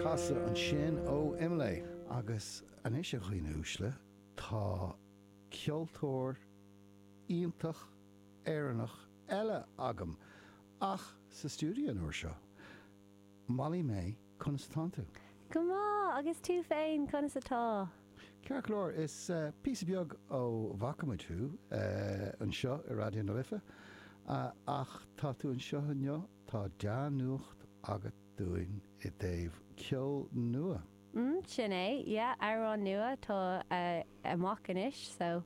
Casadh ansin ó Imlé. Agus anois, a dhaoine uaisle, tá ceoltóir iontach Éireannach eile agam, ach sa stiúideo an uair seo. Molly May, conas atánn tú? Go maith, agus tú féin, conas atá? Ceart go leor, tá sé píosa beag ó bhfaca muid thú anseo i Raidió na Life, ach tá tú anseo inniu Tá dea-nuacht agat dúinn i dtaobh ceol nua. Mm, sin é, yeah, amhrán nua atá amach anois, so.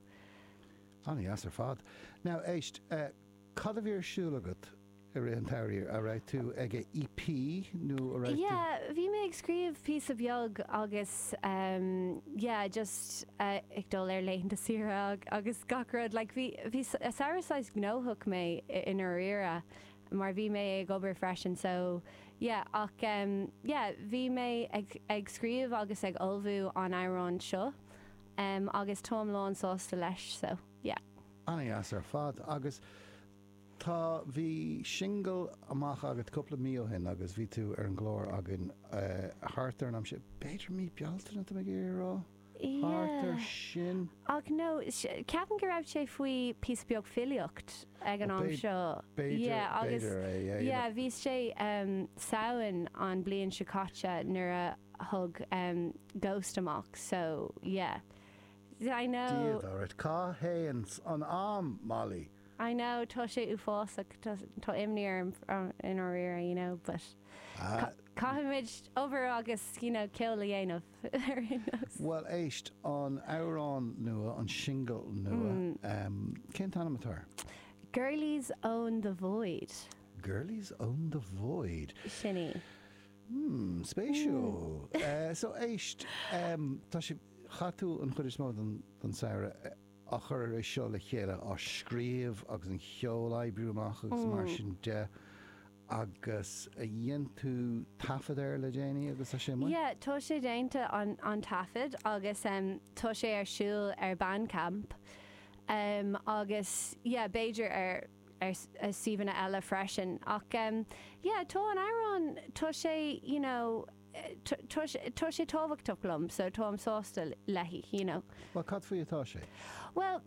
Ana-dheas ar fad. Now, éist, cad a bhí ar siúl agat i rith an tsamhraidh? An raibh tú ag a EP nó a raibh tú. Yeah, bhí mé ag scríobh píosa beag agus em, yeah, just ag dul ar laethanta saoire agus gach rud, like bhí, bhí samhradh saghas gnóthach mé i ndáiríre. mar bhí mé ag obair freisin so yeah ach em yeah bhí mé ag ag scríobh agus ag ullmhú an amhráin seo em agus táim lán sásta leis so yeah. Ana dheas ar fad agus tá bhí singil amach agat cúpla mí ó shin agus bhí tú ar an gclár againn eh thart ar an am sin, b'fhéidir mí Bealtaine tá mé ag iarraidh a rá? Carter sin. Ach nó, ceapaim go raibh sé fiú píosa beag fuar ag an am seo. B'fhéidir, b'fhéidir é, é. Yeah, bhí sé Samhain an bhliain seo caite nuair a tháinig Ghost amach, so yeah. I know. Dia duit, cá théann an am, Molly? I know, tá sé uafásach, tá imní orm i ndáiríre, you know, but caithfimid obair agus, you know, ceol a dhéanamh. ar aon nós. Bhuel éist, an amhrán nua, an singil nua, cén t-ainm atá air? Girlies Own The Void. Girlies Own The Void. Sin í. Hmm, spéisiúil. So éist, tá sé, chaith tú an chuid is mó den samhradh á chur é seo le chéile, á scríobh agus an cheol a oibriú amach agus mar sin de. Agus ar dhein tú taifead air le déanaí agus tá sé amuigh? Yeah, tá sé déanta an an taifead agus em tá sé ar siúl ar Bandcamp em agus yeah b'fhéidir ar ar suíomhanna eile freisin ach em yeah tá an amhrán tá sé you know, tá sé tábhachtach liom so táim sásta léi, you know. Bhuel, cad faoi atá sé? Bhuel,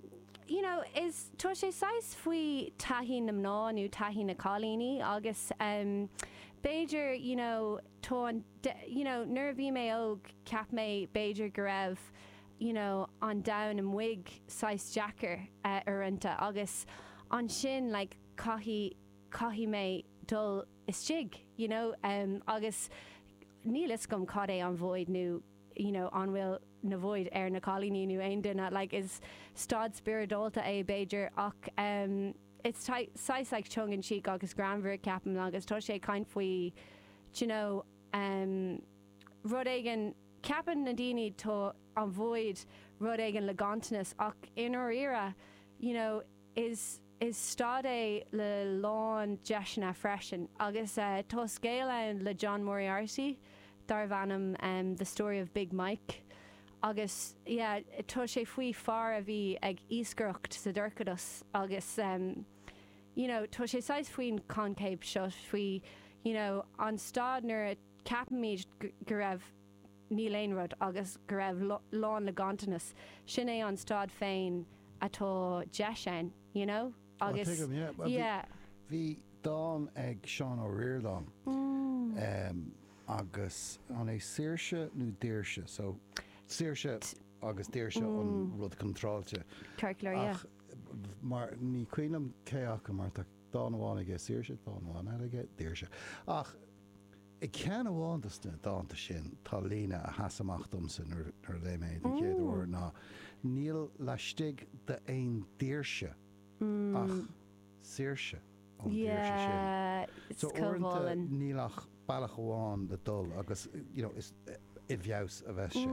you know, is, tá sé saghas faoi taithí na mná nó taithí na cailíní agus ehm b'fhéidir, you know, tá an, you know, nuair a bhí mé óg cheap mé b'fhéidir go raibh, you know, an domhan amuigh saghas deacair uaireanta agus ansin like caithfidh, caithfidh mé dul, istigh, you know, agus níl fhios agam cad é an void nó, you know, an bhfuil na void ar na cailíní nó aon duine, like, is staid spioradálta é b'fhéidir ach it's saghas like tongue in cheek agus greannmhar, ceapaim, agus tá sé ag caint faoi, do you know, rud éigin, ceapann na daoine tá an void rud éigin le ganntanas ach i ndáiríre, you know, is. Is staid é le lán deiseanna freisin agus tá scéal ann le John Moriarty darbh ainm The Story of Big Mike agus tá sé faoi fear a bhí ag iascaireacht sa dorchadas agus you know tá sé saghas faoin coincheap seo faoi you know an staid nuair a ceapaimid go raibh níl aon rud agus go raibh lán le ganntanas, sin é an staid féin atá deis ann, you know? Á, Agus, tuigim, yeah. Well, bhí- yeah. Bhí dán ag Seán Ó Ríordáin em, agus an é saoirse nó daoirse, so saoirse agus daoirse an rud contráilte. Circular, yeah. Ach b- mar ní cuimhin liom cé acu mar tá dán amháin aige saoirse, dán amháin eile aige daoirse. Ach I gceann amháin de na dánta sin tá líne a sheas amach domsa nuair a léigh mé é den chéad uair ná níl laistigh d'aon daoirse ach saoirse ón daoirse sin. So uaireanta níl ach bealach amháin le dul agus you know is i bhfeabhas a bheas sé.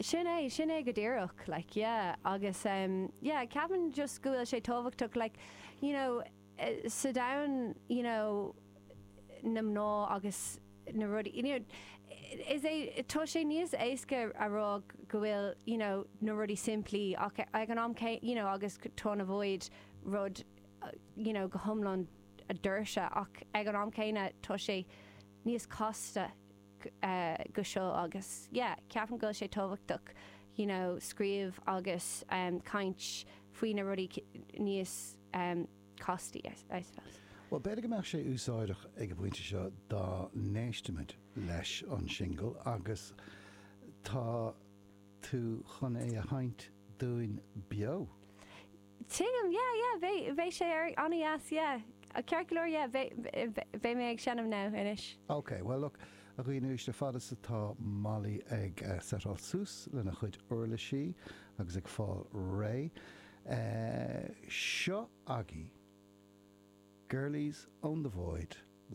Sin é, sin é go díreach like yeah agus yeah ceapaim just go bhfuil sé tábhachtach like you know, sa domhan you know na mná agus na rudaí you know is é tá sé níos éasca a rá go bhfuil you know na rudaí simplí ach ag an am céanna you know agus tá na void rud you know go hiomlán daoirse ach ag an am céanna tá sé níos casta go seo agus yeah ceapaim go bhfuil sé tábhachtach you know scríobh agus caint faoi na rudaí níos castaí I suppose. Bhuel, b'fhéidir go mbeadh sé úsáideach ag an bpointe seo dá n-éistimid leis an singil agus tá tú chun é a sheinnt dúinn beo. Tuigim, yeah, yeah, beidh, beidh sé an-deas, yeah, ceart go leor, yeah, beidh, beidh, beidh mé ag seinm now, anois. Ok, well look, a dhaoine uaisle, fad is atá Molly ag setáil suas lena chuid uirlisí agus ag fáil réidh. Eh, seo agaibh, Girlies own the void le.